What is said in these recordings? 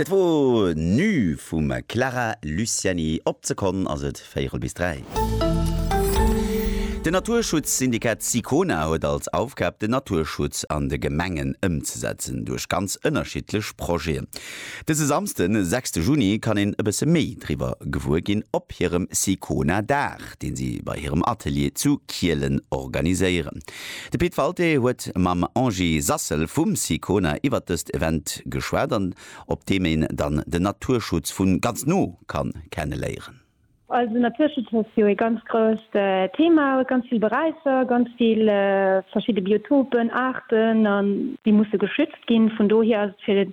Et wor nu vum Clara Luciani. Op d'Sekonn ass et véierel bis dräi. Den Naturschutzsyndikat Sicona huet als Aufgab den Naturschutz an de Gemengen ëmzesetzen duerch ganz ënnerschiddlech Projeten. Dëse Samsden, sechste Juni kann een e bësse méi driwwer gewuer ginn op hirem Sicona Dag, dee si bei hirem Atelier zu Kielen organiséieren. De Pit Walté huet mam Angie Sassel vum Sicona iwwert dëst Event geschwat an op deem een dann den Naturschutz vun ganz no kann kenne léieren. Also Naturschutz ass jo ee ganz grousst Thema, huet ganz vill Beräicher, ganz vill verschidde Biotopen, Aarten an déi musse geschützt ginn. Vun dohier ass et fir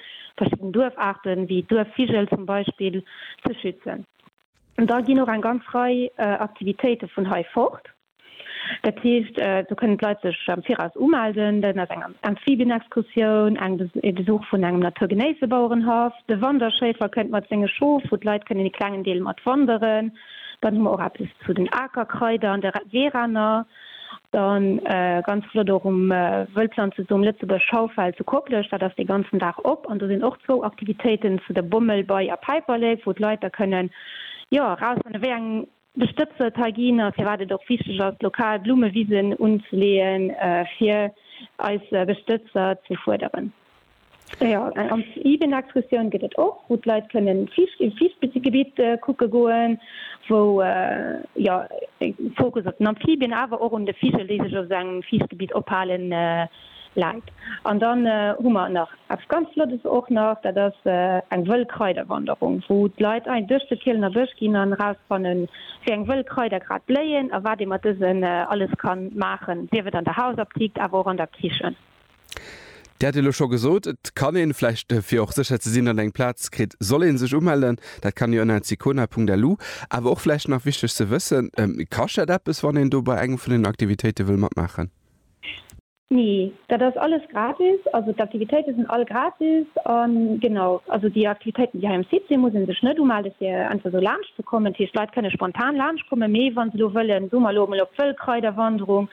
verschidden Duerfaarten, wéi Duerfvigel zum Beispill, ze schützen. Da ginn och eng ganz Rei Aktivitéite vun hei fort. Dat heescht, do kënnen d'Leit sech am Viraus umelden. Dat ass eng Amphibienexkursioun, eng e Besuch vun engem naturgenéisse Bauerenhaff, de Wanderschéifer kënnt mat senge Schof, wou d'Leit kënnen e klengen Deel mat wanderen. Dann hu mer och eppes zu den Akerkraider an de Weeraner. Dann ganz flott och um Wëllpflanzesum Lëtzebuerg Schaufel zu Koplescht, dat ass dee ganzen Dag op an do sinn och zwou Aktivitéiten zu der Bommel, Bei a Päiperlek, wou d'Leit da kënnen jo erausfannen, wéi eng Bestëbser et hei ginn a firwat et och wichteg ass, lokal Blummewisen unzeleeën, fir eis Bestëbser ze fuerderen. Ja, eng ganz Evening Exkursioun gëtt et och, wou d'Leit kënnen Fiicht, im Fiichtgebiet kucke goen, wou jo e Fokus op den Amphibien, awer och un de Vigel, déi sech op esou engem Fiichtgebiet ophalen, läit. An dann hu mer nach eppes ganz Flottes och nach, dat ass eng wëll Kraiderwanderung, wou d'Leit ein duerch de Kielener Bësch ginn an erausfannen, wéi eng wëll Kraider grad bléien a wat ee mat dësen alles kann maachen, sief et an der Hausaptikt, awer och an der Kichen. Dir hat elo scho gesot, et kann een, vläicht fir och sécher ze sinn, datt een eng Plaz kritt, soll ee sech umellen. Dat kann ee ënner Sicona.lu. Awer och vläicht nach wichteg ze wëssen, Kascht dat eppes, wann een do bei engem vun den Aktivitéite wëll matmaachen? Nee, dat ass alles gratis. Also d'Aktivitéite sinn all gratis. A genau, also déi Aktivitéiten, déi hei um Site sinn, muss ee sech net umellen, fir einfach esou laanscht ze kommen. Dat heescht, d'Leit kënne spontan laanscht kommen. Mee wa se elo wëllen, soe mer elo emol, op d'Wëllkraiderwanderung,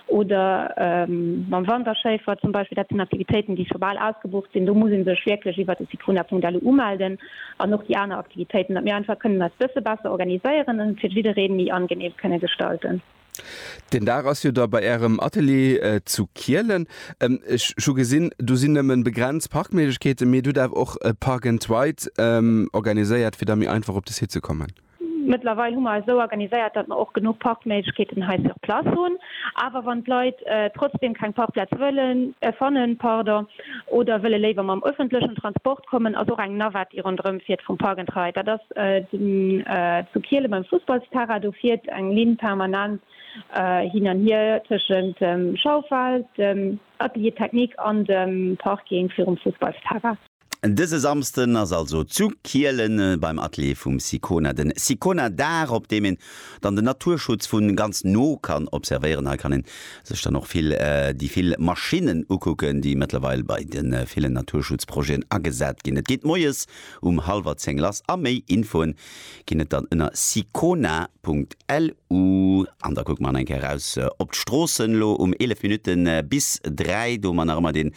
oder mam Wanderschéifer zum Beispill, dat sinn Aktivitéiten, déi scho bal ausgebucht sinn, do muss ee sech wierklech iwwert de Site Wunderpunkt-Elo umelden an och déi aner Aktivitéiten, datt mir einfach kënnen eis bësse besser organiséieren an et fir jidderee méi angeneem kënne gestalten. Den Dag ass jo da bei Ärem Atelier zu Kielen. Ech hu gesinn, do sinn nëmmen begrenzt Parkméiglechkeeten, mee et hutt awer och e Park and Ride organiséiert, fir da méi einfach op de Site ze kommen. Mëttlerweil hu mer eis esou organiséiert, datt mer och genuch Parkméiglechkeeten hei sur place hunn. Awer wann d'Leit trotzdeem keng Parkplaz wëllen, fannen, pardon, oder wëlle léiwer mam öffentlechen Transport kommen, ass och eng Navette, déi ronderëm fiert, vum Park and Ride, dat ass zu Kiele beim Fussballsterrain, do fiert eng Linn permanent hin an hier tëschent dem Schaufel, dem Atelier technique an dem Parking virum Fussballsterrain. Dëse Samsden ass also zu Kielen beim Atelier vum Sicona den Sicona Dag, op deem een dann den Naturschutz vu ganz no kann observéieren. Hei kann een sech dann och vill déi vill Maschinnen ukucken, déi mëttlerweil bei de villen Naturschutzprojeten agesat ginn. Et geet moies um hallwer 10 lass a méi Infoen ginn et dann ënner sicona.lu an da kucke mer nach eng Kéier raus op d'Stroossen. Elo um 11 Minutten bis 3, do hu mer nach ëmmer deen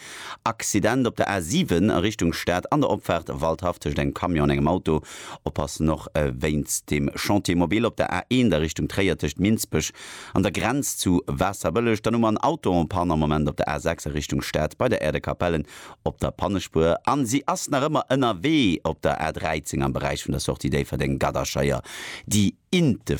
Accident op der A 7 a Richtung Stad an der Opfaart Waldhaff tëscht engem Camion an engem Auto. Oppassen och wéinst dem Chantier mobile op der A 1 a Richtung Tréier tëscht Minsbech an der Grenz zu Waasserbëlleg. Dann hu mer en Auto en panne am Moment op der A 6 a Richtung Stad bei der Äerdekapellen. op der Pannespuer an si ass nach ëmmer ënnerwee op der A 13 am Beräich vun der Sortie Déifferdeng-Gadderscheier déi Inte